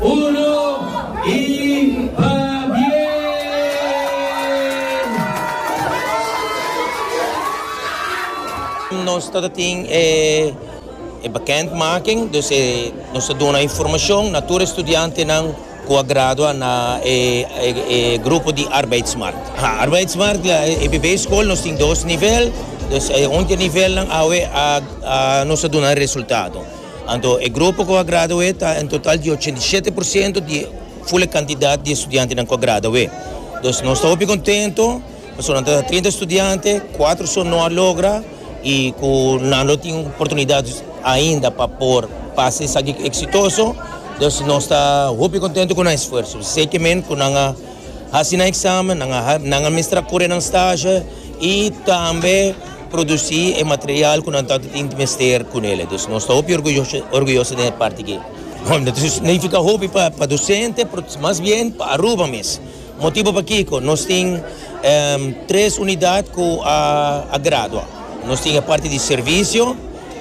Uno y pa bien! Nos ta tin e bekend making dus nos ta duna informacion na tur e studiantenan cu a gradua na e grupo di Arbeidsmarkt. Arbeidsmarkt la e primer school nos tin dos nivel, dus e under nivelnan awe a nos ta duna e resultado. Anto e grupo ku a gradu'é ta en total di ochenta i shete por siento di ful e kantidat di estudiantenan ku a gradu'é. Entonces nos ta hopi kontento pasobra nan ta trinta estudiante, kuater son no a logra i ku nan lo tin oportunidat ainda pa por pasa esaki eksitoso. Entonces nos ta hopi kontento ku nan esfuerso. Seki men ku nan a hasi nan eksamen, nan a nan a mestra kore nan stashe i tambe. produci e material cu nan tanto tin mester cu nele. Dus nos ta hopi orguyoso den e parti aki. Bon, no ta significa hopi pa docente, mas bien pa Aruba mes. Motibo pakico? Nos tin tres unidad cu a gradua. Nos tin e parti di servicio,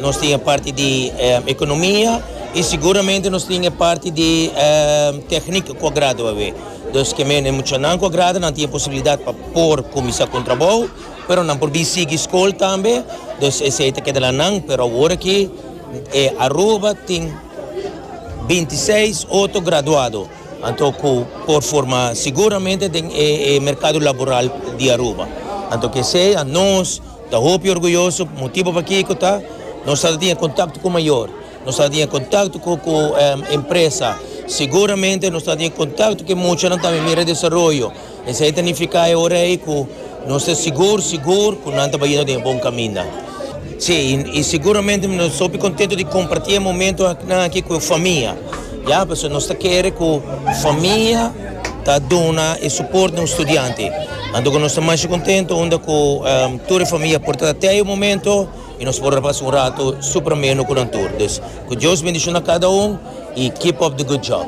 nos tin e parti di economia y seguramente nos tin e parti di techniek cu a gradua awe. Dus kier mi e muchanan cu a gradua nan tin e posibilidad pa por cuminsa con trabou. pero nan por bi sigui skol tambe dus esei ta keda na nan pero awor aki e Aruba tin binti seis otro graduado anto ku por forma siguramente den e e merkado laboral di Aruba anto kesei anos ta hopi orguyoso motibu pakiko ta nos a tatinga kontakto ku mayor nos a tatinga kontakto ku ku empresa siguramente nos ta tatinga kontakto ku e muchanan tambe mira e desaroyo. Esei ta nifiká e ora ei ku nos ta sigur sigur ku nan ta bai yendo den e bon kaminda. Sí, i siguramente mi ta hopi kontentu di kompartí e momentunan akí ku e famia, ya, pasobra nos ta kere ku famia ta duna e suport na un studiante. Anto ku nos ta masha kontentu unda ku tur e famia a por ta te e momento i nos por a pasa un ratu super amenu ku nan tur. Dus, ku Dios bendishona kada un i keep up the good job.